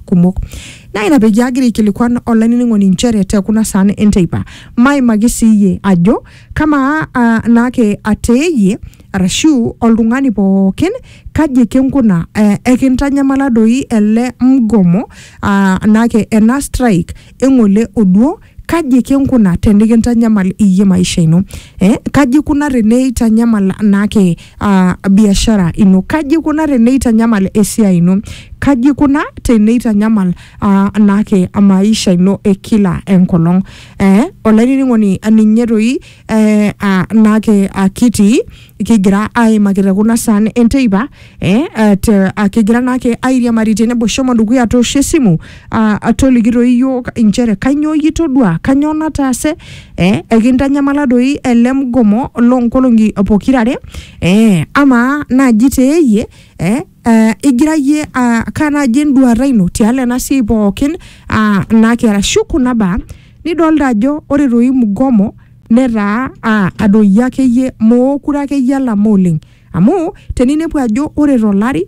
kumok naa ina peyie agira aikilikuan olainining'oni inchere te kuna saan enteipa maimaki siiyie ajo kamaa ah, naake ateeyie arashu oltung'ani pookin kaji ekinkuna eh, ekintanyamala doi ele mgomo ah, naake ena strike eng'ole oduo Kaji kinkuna tenikintanyamal iyie maisha ino? Eh, kaji ikuna teneitanyamal naake ah, biashara ino? Kaji ikuna teneitanyamal esiai ino? Kaji ikuna teneitanyamal ah, naake maisha ino e kila enkolong? Eh, olainining'oni ninye toi eh, ah, naake ah, kitii kigira aimaki te kuna saan enteipa eh, ah, te, ah, kigira naake airiamari tenebo shomo dukuya toosho esimu ah, ah, toliki toi iyiook inchere kanyoo iyie itodua kanyoo nataase eh, ekintanyamala doi ele mgomo loonkolong'i pokirare eh, amaa naaji teeyie eh, Uh, igira yie uh, kaa naaji enduata ino tialo ena siai pookin uh, naake arashu kuna baa nidolta ajo ore toi mgomo netaa uh, adoyio akeyie mookure akeyie alama oleng amu teninepu ajo ore tolari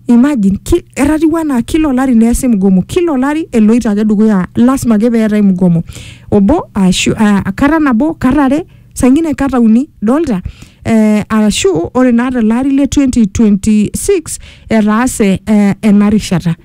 imagine ki, etatiu anaa kila olari neesi mgomo kila olari eloito ake dukuya lasima ake peetae mgomo obo ashu uh, kata nabo kata are sangine kata uni dolta eh, arashu ore naa tele ari le 2026 etaase eh, ena rishata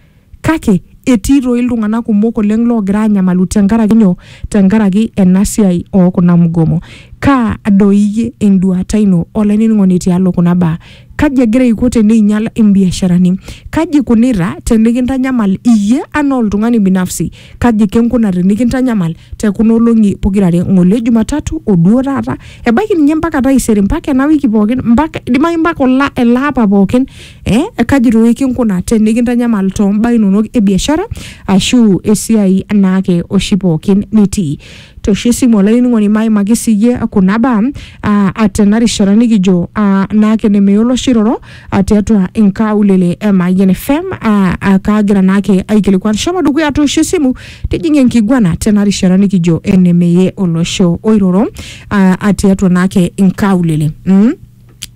kake etii toi iltung'anak kumok oleng loogira anyamalu tenkaraki nyoo tenkaraki ena siai oo kuna mgomo kaa doi iyie enduata ino olainining'oni tialo kuna baa kaji egira aiko teneinyial imbiasharani kaji ikunita tenikintanyamal iyie anaa oltung'ani binafsi kaji kinkuna tenikintanyamal te kuna olong'i pokirare ng'ole Jumatatu o duo taata ebaiki ninye mpaka taisere mpaka ena wiki pookin mpaka idimayu mpaka ola ele apa pookin eh, kaji toi kinkuna tenikintanyamal too mbaa inonok e biashara ashu esiai naake oshi pookin nitii toshi esimu olainining'oni maimaki siyie kuna baa ah, tena rishata nikijo ah, naake nemeyiolo oshi iroro ah, tiatua inkaulele e Mayian FM ah, ah, kaagira naake aikilikuan shomo dukuya toosho esimu tijing enkiguana tena rishata nikijo enemeye olosho oiroro ah, ah, tiatua naake inkaulele mm?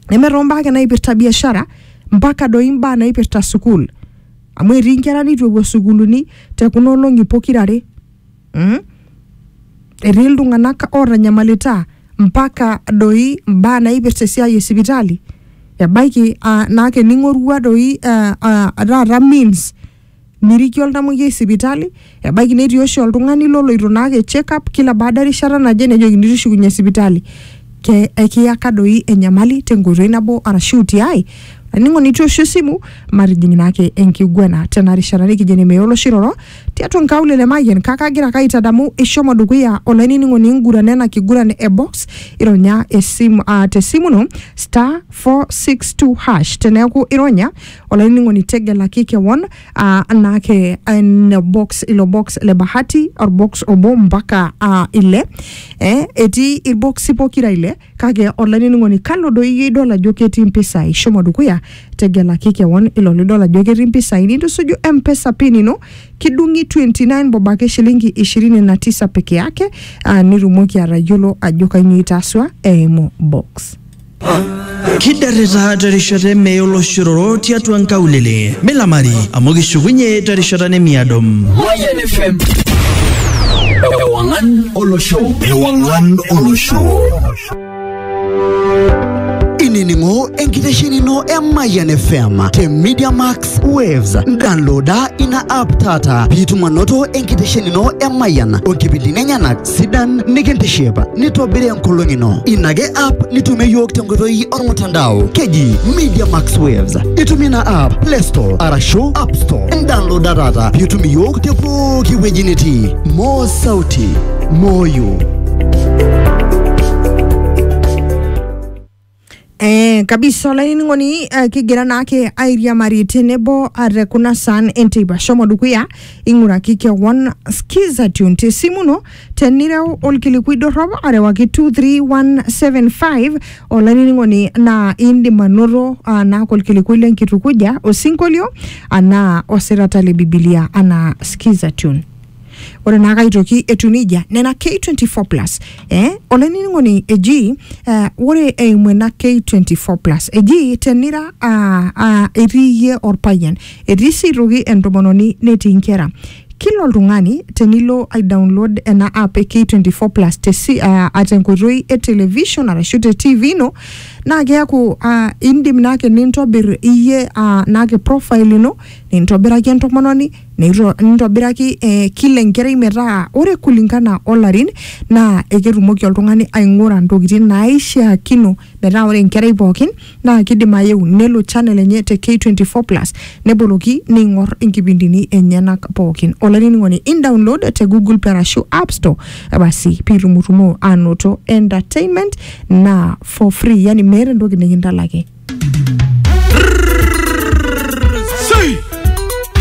neme toombaa ake naipirta biashara mpaka doi mbaa naipirta sukuul amu etii nkera neitu epuo sukuuluni te kuna olong'i pokirare mm? etii iltung'anak ootanyamalita mpaka doi mbaa naipirta esiai e sipitali ebaiki ah, naa kening'orua doi ah, ah, taata means nirikie oltamoyiai sipitali ebaiki netii oshi oltung'ani loloito naake check up kila baada erishata naje nejokini tushukunye sipitali ke ekiyaka doi enyamali tenkoitoi nabo arashu tiai aningo nitu oshi esimu matijing naake enkiguana tena rishata nikijo enemeya oloshi roro tiatua nkaulele Mayian kake agira ake aitadamu ishomo dukuya olainining'oni ingurana ena kiguran e box ironya esimu uh, tesimu ino star 462 hash teneeku ironya olainining'oni tegelaki kewon uh, naake ina box ilo box le bahati orbox obo mpaka uh, ile eh, etii irboksi pokira ile Kake olainining'oni, kalo doi iyie idol ajo ketii impisai? Shomo dukuya, tegelaki kewon ilo lidol ajo ketii impisai nintusuju M-Pesa pin ino, kidung'i 29 bob ake shilingi 29 peke yake, aa nitumoki atayiolo ajo kainyoo itaasua eimu box. Kidarita terishata e mee oloshororo tiatua nkaulele. Milamari amu kishukunye terishata nemiado. Mayian FM. Ewangan olosho ewang'an olosho inining'o enkitesheni ino e Mayian FM te Media Max Waves. Downloada ina app taata piitum anoto enkitesheni ino e Mayian onkipindini enyenak sidan nikintiship nitobiri enkolong ino. Ina ake app nitumie iyiook tenkoitoi ormutandao keji Media Max Waves. Itumie ina app Play Store arashu App Store. Downloada taata piitum iyiook te pooki wueji nitii. More sauti moyo Eh, kabisa olainining'oni eh, kigira naake airiamari tenebo ah, te kuna saan enteipa shomo dukuya ing'uraki kewon skiza tune te simu ino tenireu olkilikui dorrop arewaki 23175 olainining'oni naa indim anoto ah, naake olkilikui lenkitukuja osinkolio anaa osirata le bibilia anaa skiza tune ore naa kaitoki etiu nejia nena K24 plus eh, olainining'oni eji eh, ore eimu ena K24 plus eji tenira ah, ah, etii iyie orpayian etii sii aitoki entomononi netii inkera kila oltung'ani tenilo ai download ena app e K24 plus te si, ah, ah, tenkoitoi e television arashu te TV ino naa keaku ah, indim naake nintobir iyie ah, naake profile ino nintobiraki entomononi Neito- nitobiraki eh, kila enkerai metaa ore kulingana olarin naa eketumoki oltung'ani aing'ura ntokitin naaishiakino metaa ore enkerai pookin naa kidim ayeu nelo channel enye te K24 plus neboloki neing'or inkipindini enyenak pookin. Olainining'oni in download te Google Play arashu App Store eh, basi piitumutumoo anoto entertainment naa for free yani meeta entoki nikintalaki.